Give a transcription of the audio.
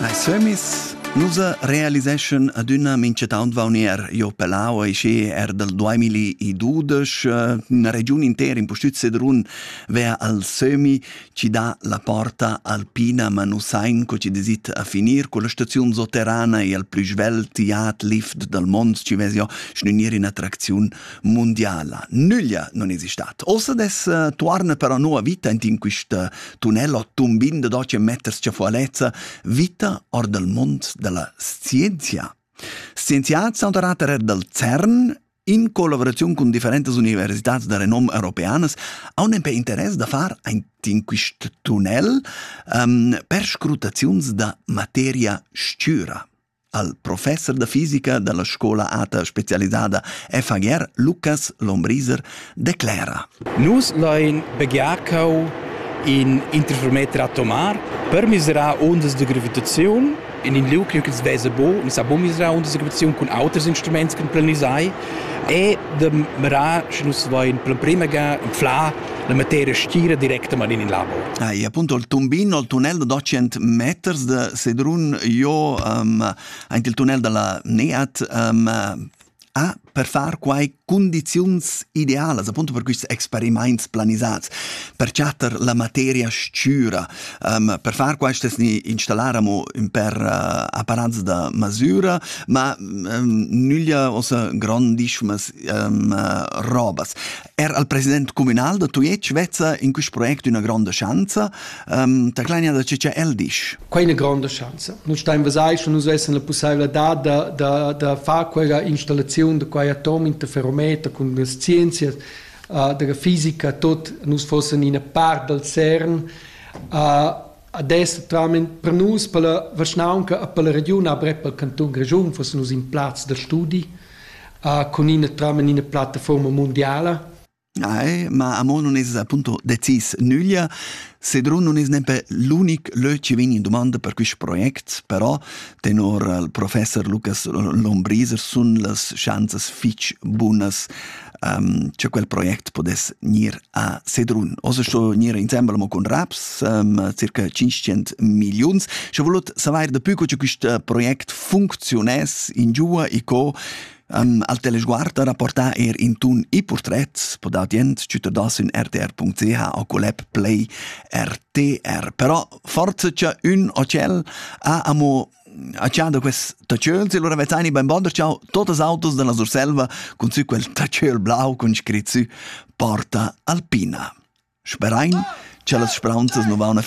Ei sömis, nus realiseschan adüna minchataunt vaunier jo Pelau e schi er dal 2012 üna regiun intera in pustüt Sedrun vea al sömi chi dà la porta alpina ma nu sain co chi desit a finir culla staziun soterrana e al plü svelt tiat lift dal mond chi vess jo schnünir in attracziun mondiala. Nüglia non esistat. Ossa des eh, tuarna per la nuova vita int in quista tunnel o tumbin de doce meters ciafualezza vita or del mond della scienzia. Scienziats sono tornati dal CERN in collaborazione con differentes università de renom europeanas hanno per interesse da far in questo tunnel um, per scrutazioni da materia scura. al professer da fisica dalla scola ata specialisada FHR Lucas Lombriser declera. Nus lein begiarcau in interfermeter atomar per miserar ondas de gravitaziun in in liug ch'ils vesa bo, mi sa bo miserar unter der Gravation cun auters Instruments kan planisai e de merar, sche nus vain per prima ga in fla la materia stira directamain in labor. Ah, e appunto il tumbino, il tunnel da 200 meters de Sedrun, io um, anche il tunnel della NEAT um, ha per far quai condizions idealas, appunto per questi experiments planisats, per chatter la materia scura, um, per far questo installaremo per uh, apparats da masura, ma um, nulla ossa grandissime um, robas. Er al president communal da Tujetsch vezza in quest project una gronda schanza. Um, da clania da ce el disch. Quai è una gronda schanza. Noi stai vasai che nus vessen la possibilità da, da, da far quella installazione di quei atom interferometer con le scienze uh, della fisica tot nus fossen in part dal CERN uh, Ad es totalmaing per nus, pella vischnaunca e pella regiun avrep pel cantun Grischun fussen nus in plaz da studi cun ina totalmaing ina plattafuorma mundiala. Ai, ma amo nun es appunto decis nüglia. Sedrun nun es nempe l'unic lö chi vegn in dumanda per quist project, però tenor il professor Lukas Lombriser sun las schanzas fich bunas um, cha quel project podess gnir a Sedrun. Oz sto gnir insembel mo cun raps, um, circa 500 milliuns. Sche volut saver da più co che quist project funcziuness in giua e co um, al telesguard rapportar er in tun e portret po da dient cittadins in rtr.ch o collab play rtr. Però forza c'è un hotel a amo A cha da quest tachöl s'il ura vezzaini beinbonder chau totas autos dalla Surselva cun sü quel tachöl blau cun scrit sü Porta Alpina. Sperain cha las spraunzas nu vauna fin